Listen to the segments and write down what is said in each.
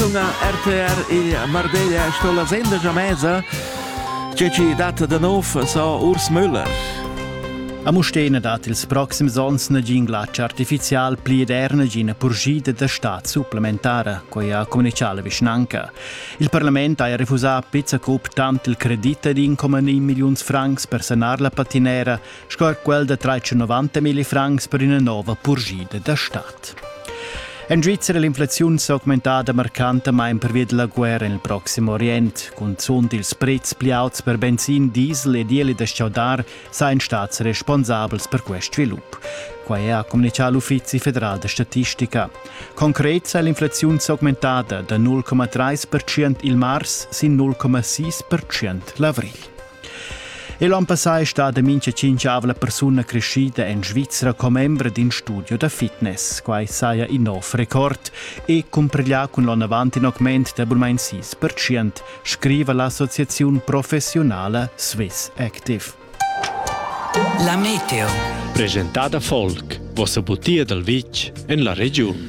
sunga RTR e Mardeglia sto la sendegia mesa che ci dat da nov so Urs Müller. A Mustena dat ils proxims onns nagin glatsch artificial pli ed er nagina purschida da stat supplementara, quai ha communicato la vischnanca. Il Parlament ha refusà a pizza cup tant il credit ad 1,9 milliuns francs per sanar la patinera sco quel da 390 mil francs per ina nova purgida da stat. En Svizzera è l'inflaziun s'augmentada marcantamain pervia della guerra nel Proximo Orient. Cunzunt ils prezs pli auts per benzin, diesel e dieli da schaudar sain stats responsabels per quest svilup. Quai ha comunicato l'Uffizi federal da statistica. Concret sa l'inflaziun s'augmentada da 0,3% il mars sin 0,6% l'avril. Igl onn passà è stada mincha tschinchavla persuna creschida en Svizra commembra d'in studio da fitness. Quai saja in nov record e cumpreglià cun l'onn avant in augment da bulmain 6%, scriva l'associaziun professiunala Swiss Active. La meteo. Presentada folk, vossa butia dal vitg en la regiun.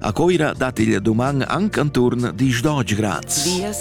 A Coira dat il doman anc anturn dis dodge grads. Vias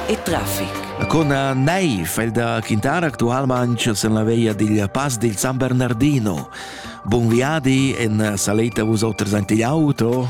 e traffic. A con nei fai da Quintara actualmente sen la veia dil Pass dil San Bernardino. Buon viadi en saleta vos oters ante l'auto.